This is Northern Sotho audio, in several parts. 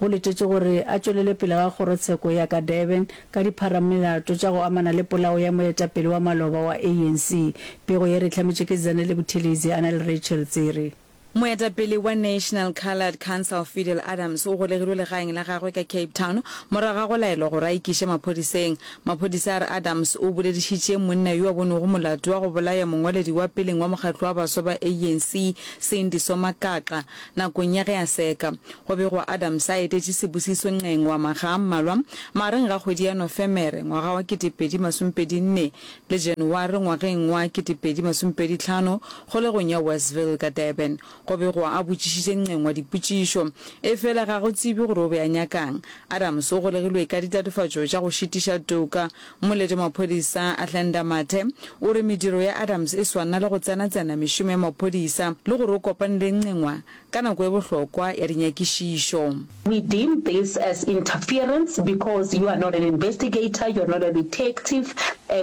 go letetšwe gore a tšwelele pele ga kgorotsheko ya ka Durban ka dipharamolato tša go amana le polao ya moetapele wa maloba wa ANC. Pego ye re e hlametšwe ke Zanele Buthelezi a na le Rachel Tsere. Moetapele wa National Coloured Council Fidel Adams o golegilwe legaeng la gagwe ka Cape Town morago ga go laelwa gore a ikiše maphodiseng. Maphodisa a re Adams o boledišitše monna yo a bonego molato wa go bolaya mongwaledi wa peleng wa mokgatlo wa baswa ba ANC, Cindy Somakaqa, Nakong ya ge a seka, go begwa Adams a etetše sebusiso nqeng wa makga a mmalwa magareng ga kgwedi ya Nofemere ngwaga wa 2024 le January ngwageng wa 2025 kgolegong ya Westville ka Durban. Go begwa a botšišitše nqeng wa dipotšišo, efela ga go tsebje gore o be a nyaka'ng. Adams o golegilwe ka ditatofatšo tša go šitiša toka Mmoledi maphodisa Athlenda Mathe o re mediro ya Adams e swanna le go tsenatsena mešomo ya maphodisa le gore o kopane le Ncengwa ka nako e bohlokwa ya dinyakišišo. We deem this as interference because you are not an investigator, you are not a detective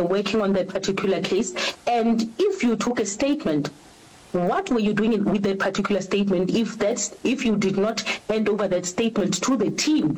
working on that particular case and if you took a statement what were you doing in with that particular statement if that if you did not hand over that statement to the team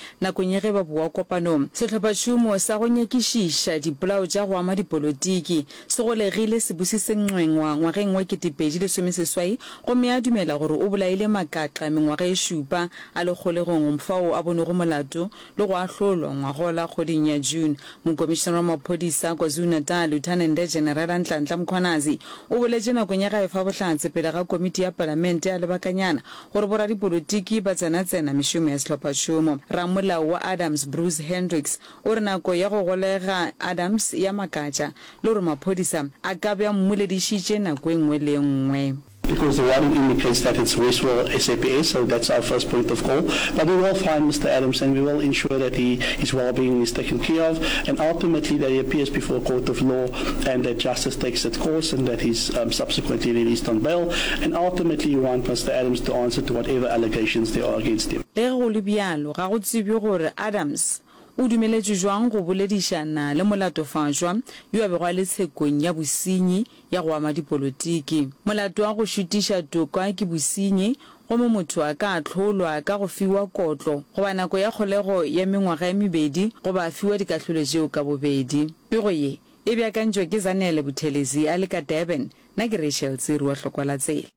Nakong ya ge ba boa kopanong, sehlophatšhomo sa go nyakišiša dipolao tša go ama dipolotiki se golegile se busitse Ncwengwa ngwageng wa ketepedi lesome seswai gomme a dumela gore o bolaile Makaqa mengwaga e šupa a le kgolegong fao a bonego molato le go ahlolwa ngwagola kgweding ya June. Mokomišenare wa maphodisa KwaZulu-Natal Lieutenant Generala Nhlanhla Mkhwanazi o boletše nakong ya gae fa bohlatse pele ga komiti ya palamente ya lebakanyana gore boradipolotiki ba tsenatsena mešomo ya sehlophašomo. Ramolao wa Adams Bruce Hendricks o re nako ya go golega Adams ya makatša le gore maphodisa a ka be a mmoledišitše nako e nngwe le e nngwe. Because the writing indicates that it's Westville SAPS, so that's our first point of call. But we will find Mister Adams and we will ensure that he, his well-being is taken care of and ultimately that he appears before a court of law. and that justice takes its course and that he's um, subsequently released on bail. And ultimately, you want Mr. Adams to answer to whatever allegations there are against him. Ge go le bjalo, ga go tsebje gore Adams o dumeletšwe jwang go boledišana le molatofaswa yo a bego a le tshekong ya bosenyi ya go ama dipolotiki. Molato wa go šutiša toka ke bosenyi Gomme motho a ka ahlolwa ka go fiwa kotlo, goba nako ya kgolego ya mengwaga ye mebedi, goba a fiwa dikahlolo tšeo ka bobedi. Pego ye e beakantšwe ke Zanele Buthelezi a le ka Durban. Nna ke Rachel Tsiru wa Hlokwa la Tsela.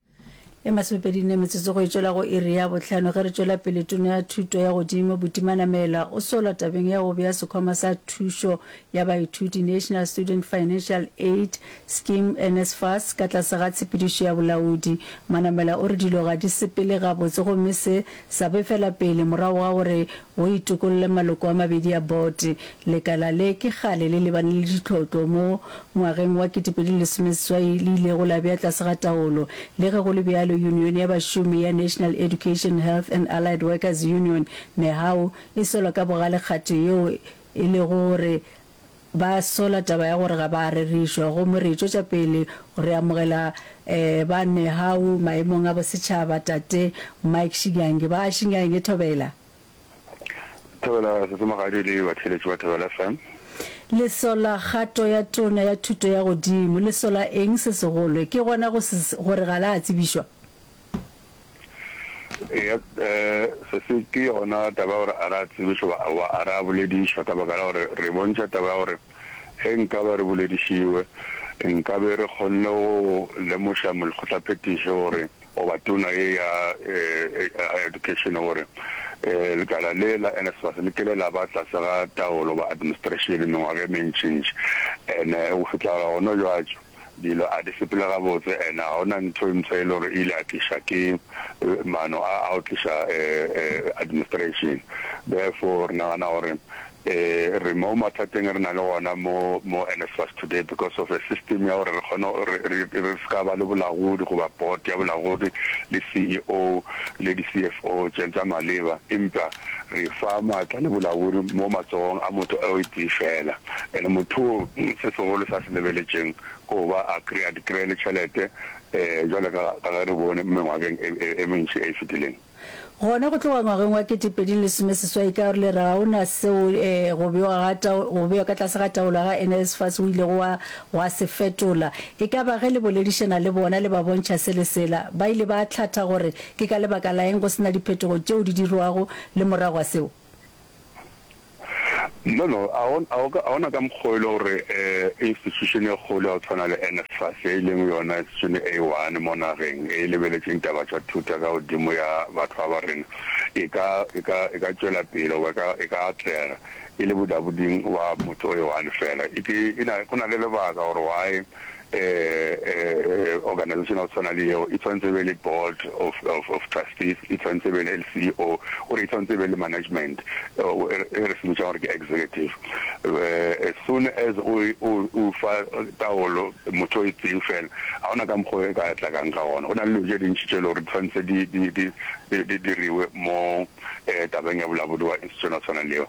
E masomepedi nne metsotso go e tšwela go iri ya bohlano ge re tšwela pele Tona ya Thuto ya Godimo Butimana Mela o sola tabeng ya go bea sekhwama sa thušo ya baithuti National Student Financial Aid Scheme, NSFAS, ka tlase ga tshepedišo ya bolaodi. Manamela o re dilo ga di sepele gabotse gomme se sa befela pele morago ga gore go itokolle maloko a mabedi a bote. Lekala le ke kgale le lebane le ditlhotlo mo ngwageng wa 2016 le ilego la bea tlase ga taolo. Le ge go le bjalo, yunione ya bašomi ya National Education, Health and Allied Workers Union, NEHAWU, e sola ka bogale kgato yeo e lego gore Ba sola taba ya gore ga ba a rerišwa, gomme re tšwetša pele go re amogela ba Nehawu maemong a bosetšhaba. Tate Mike Shinyange, ba Shinyange, thobela. Thobela Sese Mogadi le batheeletši ba Thobela FM. Le sola kgato ya Tona ya Thuto ya Godimo. Le sola eng se segolo? Ke gona go se, gore ga la a tsebišwa? Eya, sese ke yona taba ya gore a re a tsebišwe goba a re a boledišwe, ka baka la gore re bontšha taba ya gore ge nkabe re boledišiwe, nkabe re kgonne go lemoša molekgotlaphethiši gore goba tona ye ya Education gore lekala le la NSFAS le kile la ba tlase ga taolo goba administration mengwaga e mentšintši, and go fihla gona bjale. Dilo a di sepele gabotse, and ga go na ntho e mpsha e le gore e ile ya tlišwa ke maano a a go tliša administration. Therefore re nagana gore re mo mathateng a re na le ona mo mo NSFAS today because of a system ya gore re kgone re re ska ba le bolagodi goba board ya bolagodi le CEO le di CFO tse tsa maleba empa re fa maatla le bolaodi mo matsogong a motho o itee feela. And mothoo se segolo sa se lebeletšeng ke go ba a kry-a di kry-e le tšhelete jwale ka ka ge re bone mengwageng e e mentši e e fetileng. Gona go tloga ngwageng wa kete pedi le lesome seswai ka re le re ga o na seo go bewa ga tao go bewa ka tlase ga taolo ga NSFAS go ilego gwa gwa se fetola. E ka ba ge le boledišana le bona le ba bontšha se le sela ba ile ba hlatha gore Ke ka lebaka la eng go se na diphetogo tšeo di dirwago le morago ga seo? Nono, ga go na ka mokgwa wo e le gore institution e kgolo ya go tshwana le NSFAS, ye e leng yona institution e A1 mo nageng e e lebeletšeng ditaba tša thuto ka godimo ya batho ba ba rena, e ka, e ka, e ka tšwela pele goba e ka, e ka atlega e le bodaboding bwa motho o i one fela. Eke e na, go na le lebaka gore why Ee, organization ya go tshwana le yeo e tshwanetse e be le board of, of, of trustees, e tshwanetse e be le CEO, gore e tshwanetse e be le management, e re se bitšang gore ke executive. Eh, as soon as o, o, o fa taolo motho o e tseng fela, ga ona ka mokgwa e ka tlakang ka gona. Go na le dilo tše dintši tše e le gore di tshwanetse di, di, di, di, di diriwe mo tabeng ya bolabodu wa East yona tshwana leo.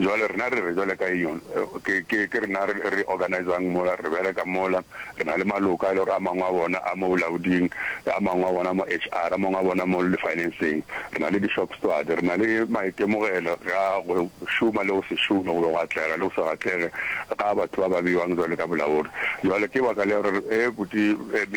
Jwale rena re re jwale ka eng ke ke ke rena re re organize-ang mola re bereka mola re na le maloka e le gore a mangwe a bona a mo bolaoding a mangwe a bona mo HR a mangwe a bona mo le finance-eng re na le di shop steward re na le maitemogelo ga go šoma le go se šome go be go atlega le go se atlege ga batho ba ba beiwang jwale ka bolaodi jwale ke baka le gore e buti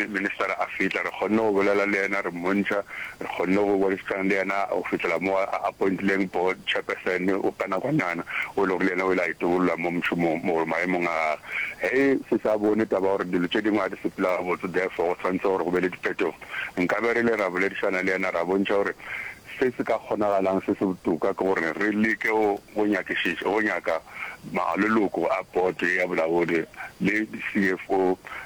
minister a fitla re kgonne go bolela le yena re mmontšha Re kgonne go boletšana le yena go fihlela mo a appointileng board chairperson o ka nakwanyana o e lego le yena o ile a itobolola mo mošomong mo gore maemong a gage. Ge se sa bone taba ya gore dilo tše dingwe ga di sepela gabotse therefore go swanetše gore go be le diphetogo, nkabe re ile ra boledišana le yena ra bontšha gore se se ka kgonagalang se se botoka ke gore re leke go nyakišiša go nyaka maloloko a board ya bolaodi le di CFO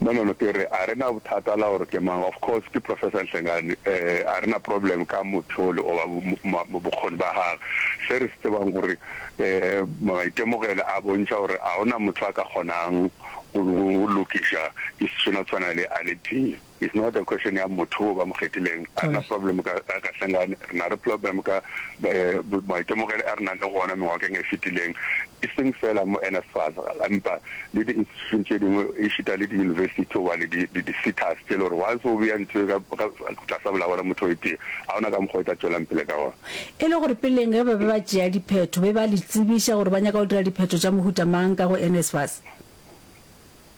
Nonono ke re a re na bothata la gore ke mang, of course ke Professor Nhlengani, a re na problem ka motho ole goba bokgoni ba gagwe. Se re se tsebang ke gore maitemogelo a bontšha gore ga go na motho a ka kgonang go lokiša issue e tshwana le a le tee. It's not a question ya motho wo ba mo kgethileng. A re na problem ka Kahlengane, re na re problem ka maitemogele a re nang le gona mengwakeng e fetileng, e seng fela mo NSFAS empa le di institution tše dingwe ešita le di university tse gobane di di sitas tše le gore once o beya ntho ka tlasa bolao la motho o e tee ga ona ka mokgwa o tla tšwelang pele ka gona. E le gore peleng ge ba be ba tšea diphetho be ba le tsebiša gore ba nyaka go dira diphetho tša mohuta mang ka go NSFAS?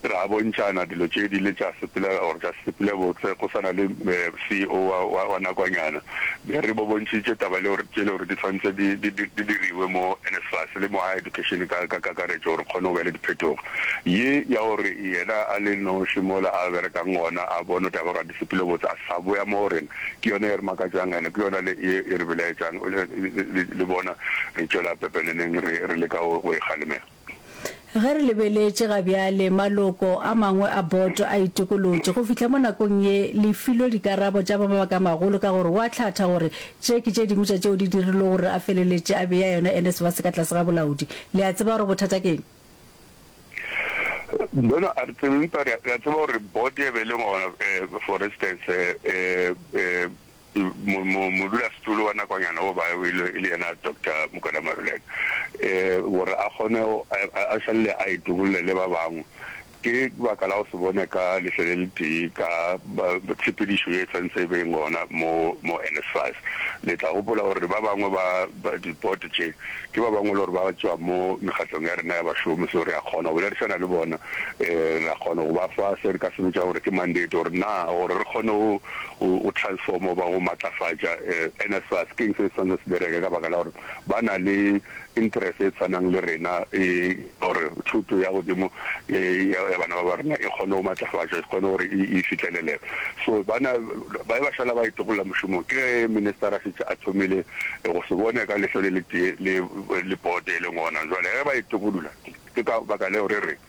Ra bontšana dilo tše di le tša sepela or tša sepele botse go swana le CEO wa wa wa nakwanyana. Be re bo bontšitše taba le gore tše le gore di tshwantse di di di di diriwe mo NSFAS le mo higher education ka ka kakaretšo gore kgone go be le diphetogo. Ye ya gore yena a le noši mola a berekang gona a bone taba gore a di sepele botse a sa boya mo go rena ke yona ye re makatšang and ke yona le ye e re belaetšang le le le bona re tšwela pepeneneng re re leka go go e kgalemela. Ge re lebeletše ga bjale, maloko a mangwe a boto a itokolotše go fihla mo nakong ye le filwe dikarabo tša mabakamagolo ka gore go a hlatha gore tše ke tše dingwe tša tšeo di dirilwego gore a feleletše a bea yona NSFAS ka tlase ga bolaodi. Le a tseba gore bothata ke eng? Bona, a re tsebe, empa re a tseba gore boto e be e le gona, for instance, Modulasetulo wa nakwanyana wo ba e le yena Doctor Mokwena Maruleka gore a kgone a šalele a itobolle le ba bangwe ke baka la go se bone ka lehlo le le tee ka tshepedišo ye tshwantse e be gona mo mo NSFAS. Le tla gopola gore ba bangwe ba dipote tše ke ba bangwe le gore ba tšwa mo mekgatlong ya rena ya bašomi so re a kgona go bolerisana le bona re a kgona go ba fa se re ka se bitša gore ke mandate gore na gore re kgone go O, o transforma goba go matlafatša eh, NSFAS. Ke'ng se e swanetše se bereke? Ka baka la gore ba na le interest e tshwanang le rena eh, gore thuto ya godimo eh, ya, ya bana ba ba rena e kgone go matlafatšwa, e kgone gore e, e fihlelelege. So, bana ba be ba šala ba itokolla mošomong. Ke ge minister a šetše a thomile eh, go se bone ka lehlo le letee le, le board e leng gona. Jwale ge ba itokolla, ke, ke ka baka leo re reng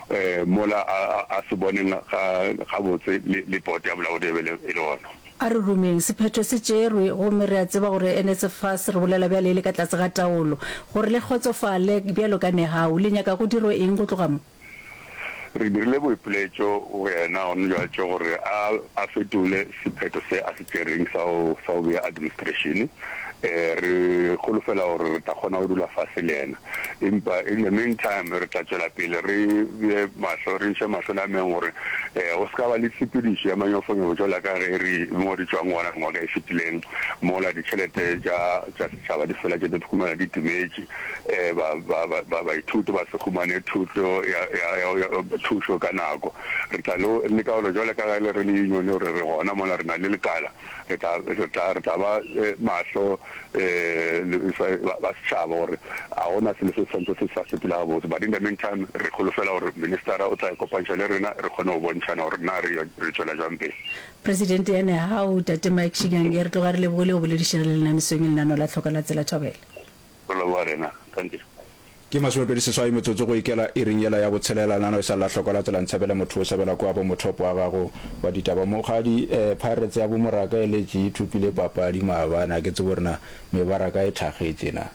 Mola a se boneng gabotse le pote ya bolaodi e be e le gona. A re rumeng, sephetho se tšerwe, gomme re a tseba gore NSFAS, re bolela bjale e le ka tlase ga taolo. Gore le kgotsofale, bjalo ka Nehau, le nyaka go dirwe eng go tloga mo? Re dirile boipiletšo go yena gona bjatše gore a fetole sephetho se a se tšereng sa go bea administrešene. Re holofela gore re tla kgona go dula fase le yena. empa in the mean time re tla tšwela pele re bje mahlo, re iše mahlo nameng gore go se ka ba le tshepedišo ya manyofonyobo tšwela ka ge re mo re tšwang gona ngwaga e fetileng mola ditšhelete tša tša setšhaba di fela tše di khumana di timetše ba ba ba baithuti ba se khumane thuto ya ya ya thušo ka nako re tla lo leka gore jwale ka ge le re le union gore re gona mola re na le lekala re tla re tla re tla ba mahlo ba setšhaba gore a gona selo se santse se sa sepela gabotse but in the meantime re kholofela gore ministara o tla ikopantšha le rena re kgone go bontšhana gore na re re tšwela jang pele. Presidente ya Nehau, Tate Mike Shinyange, re tloga re lebogile go boledišana le lena mesong e lenano la Tlhoka la Tsela Thobela. Go leboga rena. Thank you. Ke masomepedi seswai metsotso go ikela iring yela ya botshelela. Nano e sa lla hloko la tsela Ntshabela motho o sabela kwa bo motop wa gago wa ditaba. Mokgadi eh Pirates ya bo Moraka e letše e thopile papadi maabane a ke tsebe gore na mebaraka e thagetše na.